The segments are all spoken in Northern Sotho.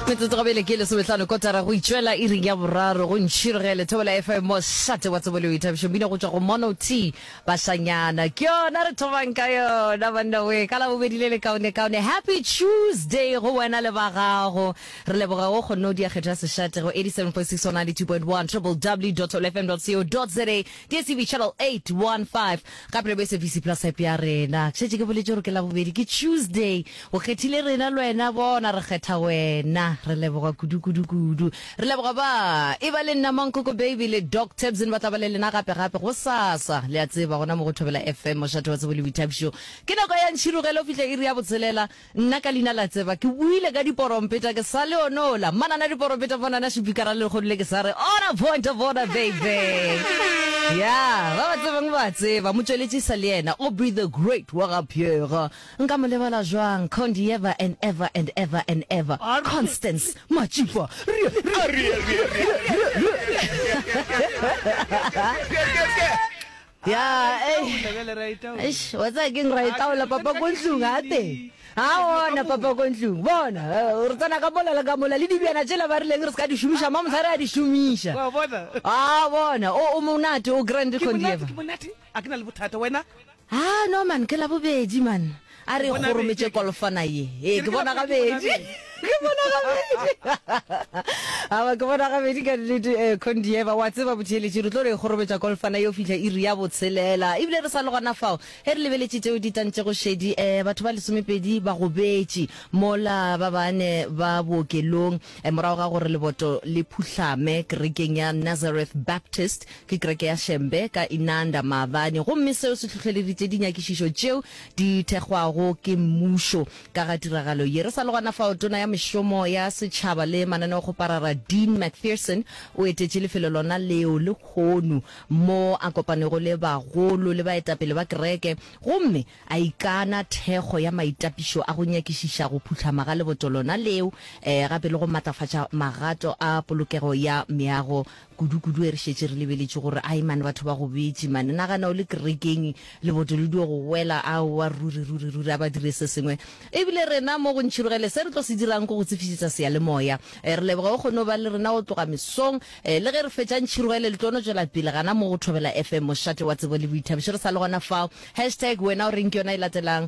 metsotso go bele ke lesometlhano kotara go itšwela e ring ya boraro go ntšhiro ge lethobola fm mo šate wa tsebo leo ithabišo mmino go tswa go mono t bašanyana ke yona re thomang ka yona banna we ka labobedi le lekaone kaone happy tuesday go wena le ba gago re leboga go kgonne o diakgetho ya sešate go 87.6 92.1 www lfm co za DSTV channel 815 gape le bo SABC plus app ya rena. Ke šetše ke boletše gore ke la bobedi ke Tuesday. O kgethile rena le wena bona re kgetha wena. Re leboga kudu kudu kudu. Re leboga ba e ba le nna Mankoko Baby le Doc Tabson ba tla ba le lena gape gape go sasa. Le a tseba gona mo go Thobela FM mošate wa tsebo le boithabišo. Ke nako ya ntšhirogelo fihla iri ya botshelela. Nna ka leina la Tseba ke buile ka diporompeta ke sa le one ola manana diporompeta monana šipikara le lekgodi le ke sa re ona pointa bona baby ya ba ba tsebang ba a tseba motšweletši e sa le yena o be the great wa ga Pierre nka mo lebala jwang condi ever and ever and ever and ever Constance Matšipa Ya, ei, eish, wa tsaya keng ra e tlaola papa ko ntlong ga teng ga ona papa ko ntlong bona eh, re tsena ka mola le ka mola le dibjana tšela ba rileng re se ka di šomiša ma mosare a di šomiša Wa bona? a bona o o monate o grand Ke monate, condieva ke monate a ke na le bothata wena ha no man ke la bobedi man A re kgorometše kolofana ye. Ee, ke bona gabedi. Ke bona gabedi. Awa, ke bona gabedi ka nnete. Eh, Condieva, wa tseba botheeletši, re tlo re kgorometša kolofana ye o fihla iri ya botshelela. Ebile re sa le gona fao, ge re lebeletše tšeo di tantšego šedi, eh, batho ba lesomepedi ba gobetše mola, ba bane ba bookelong, eh, morago ga gore leboto le phuhlame kerekeng ya Nazareth Baptist, ke kereke ya Shembe, ka Inanda maabane. Gomme seo se hlohleleditše dinyakišišo tšeo di thekgwago ke mmušo. Ka ga tiragalo ye, re sa le gona fao, Tona ya Mešomo ya Setšhaba le Mananeokgoparara Dean McPherson o etetše lefelo lona leo lehono mo a kopanego le bagolo le baetapele ba kereke gomme a ikana thekgo ya maitapišo a go nyakišiša go phuhlama ga leboto lona leo gape le go matlafatša magato a polokego ya meago Kudu kudu e re šetše re lebeletše gore ai man batho ba go betše man nagana o le kerekeng leboto le dio go wela aowa ruri ruri ruri a ba dire se sengwe e bile rena mo go ntšhirogele se re tlo se dirang ke go tsefišetša seyalemoya eh, re leboga o kgone o ba le rena go tloga mesong eh, le ge re fetša ntšhirogele le tlo no tšwela pele gana mo go thobela fm mošate wa tsebo le boithabišo re sa le gona fao hashtag wena o reng ke yona e latelang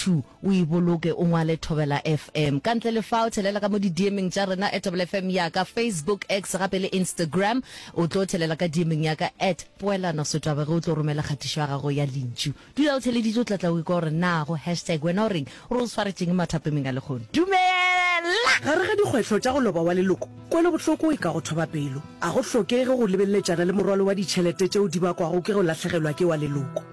2 o e boloke o ngwale Thobela FM. Ka ntle le fao, thelela ka mo didiemeng tša rena at Thobela FM ya ka, Facebook, X gape le Instagram. O tlo thelela ka diemeng ya ka at Poelano Sotwabe ge o tlo romela kgatišo ya gago ya lentšu. Dula o theleditše o tla tla o ikwa gore na go hashtag wena o reng gore o swaretšeng mathapemeng a lekgono. Dumela! Gare ga dikgwetlho tša go loba wa leloko, kwelobohloko e ka go thoba pelo. A go hlokege go lebeleletšana le morwalo wa ditšhelete tšeo di bakwago ke go lahlegelwa ke wa leloko.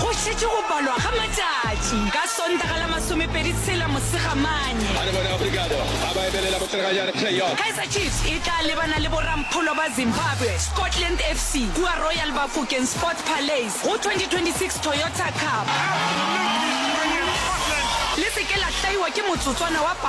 Go šetše go balwa ga matšatši ka Sontaga la masomepedi tshela Mosegamane, Kaizer Chiefs e tla lebana le borampholo ba Zimbabwe, Scotland FC, kua Royal Bafokeng Sports Palace go 2026 Toyota Cup. Le se ke la hlaiwa ke motsotswana wa papadi.